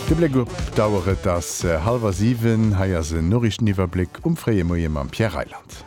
De Bléck op d'Auer, et ass hallwer siwen. Hei ass en Noriichteniwwerbléck um fréie Moie mam Pierre Reyland.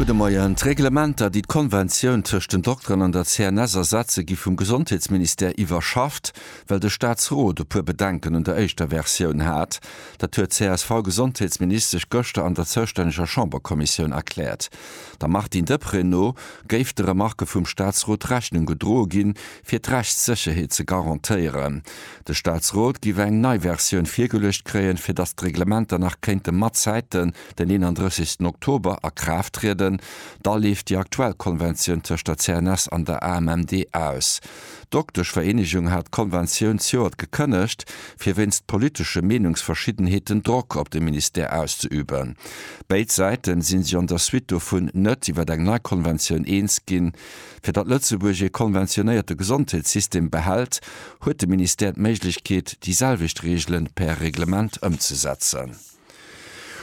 Gudde Moien. D'Reglementer, déi d'Konventioun tëscht den Dokteren an der CNS ersetze gi vum Gesondheetsministère iwwerschafft, well de Staatsrot e puer Bedenken un der éischter Versioun hat. Dat huet d'CSV-Gesondheetsministesch gëschter an der zoustänneger Chamberkommissioun erkläert. Der Martine Deprez no géif de Remarke vum Staatsrot Rechnung gedroe ginn, fir d'Rechtssécherheet ze garantéieren. De Staatsrot giff eng nei Versioun virgeluecht kréien, fir datt d'Reglementer nach kéinte matzäiten den 31. Oktober a Kraaft trieden. Da leeft déi aktuell Konventioun tëscht der CNS an der AMMD aus. D'Dokteschvereenegung hat d'Konventioun zjoert gekënnegt, fir wéinst politesche Meenungsverschiddenheeten Drock op de Ministère auszeüben. Béid Säiten sinn sech an der Suite dovun net iwwer eng nei Konventioun eens ginn. Fir datt Lëtzebuerg ee konventionéierte Gesondheetssystem behält, huet de Ministère d'Méiglechkeet, déi selwecht Reegelen per Reglement ëmzesetzen.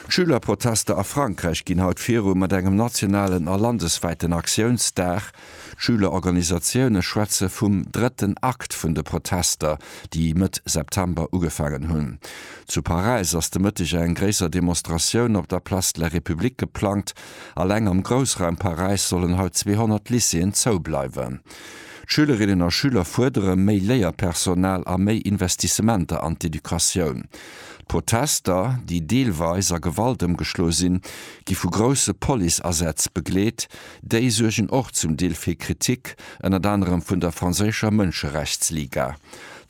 D'Schülerprotester a Frankräich ginn haut viru mat engem nationalen a landeswäiten Aktiounsdag. D'Schülerorganisatioune schwätze vum drëtten Akt vun de Protester, déi Mëtt September ugefaangen hunn. Zu Paräis ass de Mëtteg eng gréisser Demonstratioun op der Place de la République geplangt. Alleng am Groussraum Paräis sollen haut 200 Lycéeën zou bleiwen. D'Schülerinnen a Schüler fuerdere méi Léierpersonal a méi Investissementer an d'Educatioun. D'Protester, déi deelweis a Gewalt ëmgeschloe sinn, gi vu grousse Police-Asätz begleet. Déi suergen och zum Deel fir Kritik, ënnert anerem vun der franséischer Mënscherechtsliga.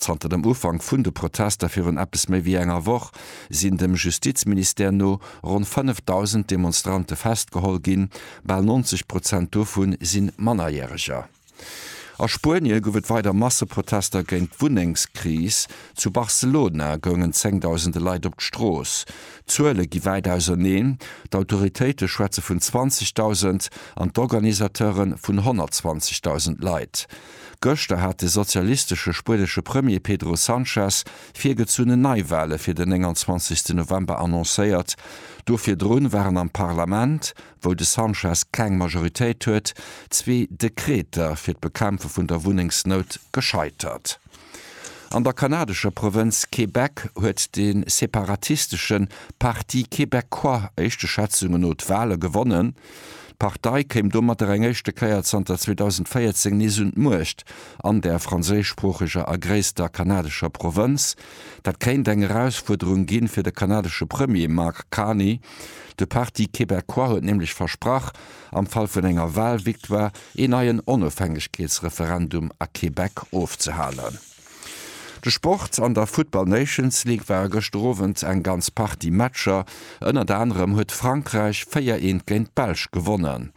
Zanter dem Ufank vun de Protester virun eppes méi wéi enger Woch sinn dem Justizministère no ronn 5.000 Demonstrante festgeholl ginn, bal 90 Prozent dovu si Mannerjäreger. A Spuenie gouf et weider Masseprotester géint d'Wunnengskris. Zu Barcelona goungen zéngdausende Leit op d'Strooss. D'Zuele gi wäit auserneen, d'Autoritéite schwätze vun 20.000 an d'Organisateure vun 120.000 Leit. Gëschter hat de sozialistesche spuenesche Premier Pedro Sanchez virgezunnen Neiwale fir den 29 November annoncéiert. Do virdrun waren am Parlament wou de Sanchez keng Majoritéit huet, zwee Dekreter fir d'Bekämpfe vun der Wunnengsnout gescheitert. An der kanadescher Provënz Québec huet de separatistesche Parti québécois éischte Schätzunge no d'Wale gewonnen. D'Partei kéim domatter eng éischte Kéier zanter 2014 nees un d'Muecht an där franséischsproocheger a gréisster kanadescher Provënz. Dat kéint eng Erausfuerderung gi fir de kanadesche Premier Mark Carney. De Parti québécois huet nämlech versprach, am Fall vun enger Walvictoire een neien Onofhängegkeetsreferendum a Québec ofzehalen. De Sport, An der Football Nations League ware gëschter Owend eng ganz Partie Matcher. Ënnert anerem huet Frankräich 4 eent géint d'Belsch gewonnen.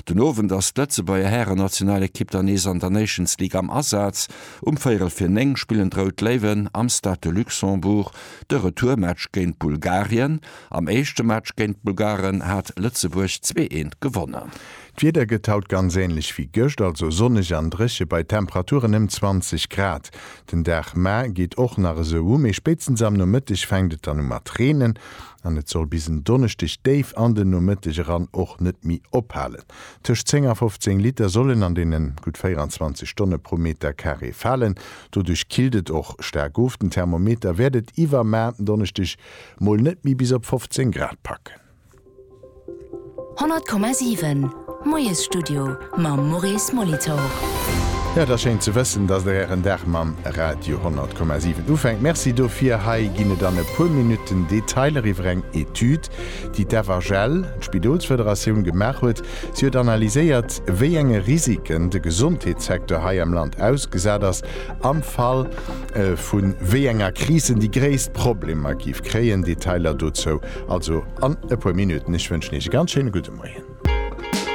Den Owend ass d'Lëtzebuerger Härennationalekipp dann nees an der Nations League am Asaz. Um véierel fir 9 spillen d'Rout Léiwen am Stade de Luxembourg de Retourmatch géint Bulgarien. Am éischte Match géint d'Bulgaren hat Lëtzebuerg zwee eent gewonnen. D'Wieder gëtt haut ganz änlech wéi gëscht, also sonneg an dréche bei Temperaturen ëm 20 Grad. Den Dag ma geet och nach esou u, mee spéitstens am Nomëtteg fänkt et dann u mat reenen an et soll bis en Donneschdeg déif an den Nomëtteg eran och net méi ophalen. Tëscht 10 a 15 Liter sollen an deene gutt 24 Stonne pro Metercarré falen. Doduerch killt et och staark of. Den Thermometer wäert et iwwer ma Donneschdeg Mol net méi bis op 15 Grad packen. 100,7 Moiesstudio mam Maurice Molitor. Jo, et ass schéin ze wëssen, datt der ären Dag mam Radio 100,7 ufänkt. Merci dofir. Hei ginn et an e puer Minutten Detailer iwwer eng Etüd, déi d'FHL, d'Spidolsfederatioun, gemaach huet. Si huet analyséiert, wéi enge Risiken de Gesondheetssecteur hei am Land ausgesat ass am Fall, Vu wéi enger Kris en déi gréisst Problemer géif kréien, Detailer dozou also an e puer Minutten. Ech wënschen Iech e ganz schéine gudde Moien.